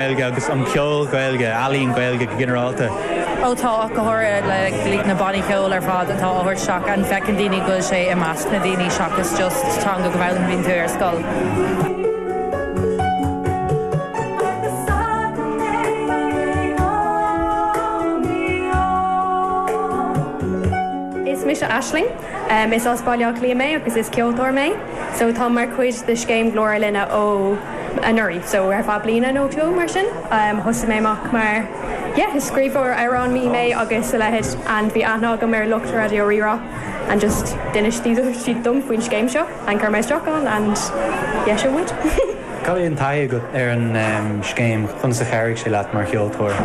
Ghaeilge agus an ceol Gaeilge, ealaín Gaeilge go ginearálta. Ó tá, ó go háirithe le like na bannaí ceoil ar fad atá á thabhairt isteach and feiceann daoine go bhfuil sé i measc na daoine seachas just teanga go bhfoghlaimíonn tú ar scoil. Is mise Aisling. Is as Baile Átha Cliath mé agus is ceoltóir mé so táim mar chuid de scéim Glór ár Linne ó anuraidh so ar feadh bliana nó dhó mar sin. Thosaigh mé amach mar yeah scríbhneoir amhrán bhí mé agus a leithid and bhí aithne agam ar lucht Raidió Rí-Rá and just d'inis siad dom faoin scéim seo. An bhféadfá a bheith isteach ann and léim mé uaidh. Cad í an taithí agat ar an scéim? Conas a chabhraigh sé leat mar cheoltóir?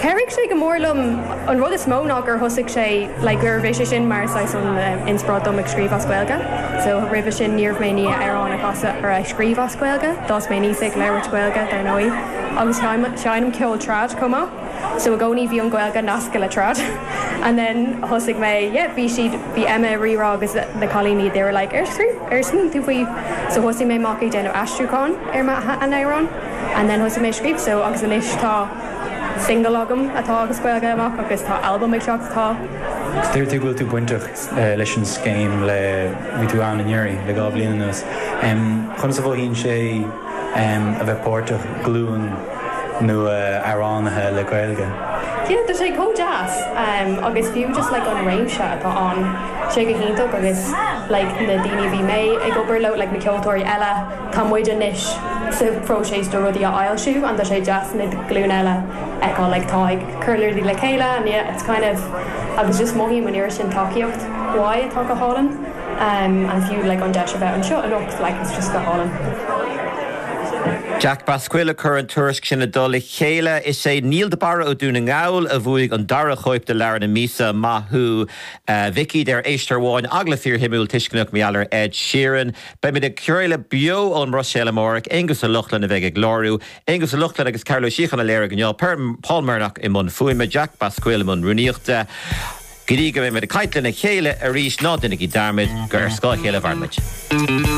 Chabhraigh sé go mór liom. An rud is mó ná gur thosaigh sé like nuair a bhí sé sin mar saghas an inspioráid dom a scríobh as Gaeilge. So roimhe sin ní raibh mé in ann amhráin a chasadh or a scríobh as Gaeilge. D'fhás mé aníos ag labhairt Gaeilge dar ndóigh agus sheinm ceol trad chomh maith. So i gcónaí bhí an Gaeilge nasctha le trad and then thosaigh mé, yeah, bhí siad, bhí Emma ag Rí-Rá agus na cailíní, they were like ar scríobh, ar smaoinigh tú faoi? So thosaigh mé amach ag déanamh aistriúcháin ar m'amhráin and then thosaigh mé ag scríobh, so agus anois tá single agam atá as Gaeilge amach agus tá albam ag teacht atá. Deir tú go bhfuil tú bainteach leis an scéim le, bhí tú ann anuraidh le dhá bhliain anuas. Conas a mhothaíonn sé a bheith páirteach i nglúin? nua amhránaithe le Gaeilge. Yeah tá sé chomh deas ehm agus fiú just like an réimse atá ann tá sé go hiontach agus like na daoine a bhí mé ag obair leo like na ceoltóirí eile tá muid anois sa phróiseas do rudaí a fhoilsiú and tá sé deas na glúine eile a fheiceáil like atá ag cur rudaí le chéile and yeah it's kind of agus just mothaím an oiread sin tacaíocht uaidh atá go hálainn. amh and fiú like an deis a bheith anseo anocht like it's just go hálainn. Jack Basquill a chuir an tuairisc sin i dtoll a chéile. Is é Niall de Barra ó Dún na nGall a bhuaigh an dara chóip de Leabhar na Míosa. Maith thú a mhic a deir éisteoir amháin, agallamh fíorshuimiúil tuisceanach meabhair Ed Sheeran. Beimid ag craoladh beo ón mBruiséil amárach. Aonghus Ó Lochlainn a bheidh ag láithriú. Aonghus Ó Lochlainn agus Cathal Ó Síocháin a léirigh inniu. Paul Murnock i mbun fuaime. Jack Basquill i mbun rúnaíochta. Go dtí go mbeidh muid ag caint lena chéile arís ná deinigí dearmad gur ar scáth a chéile a mhairimid.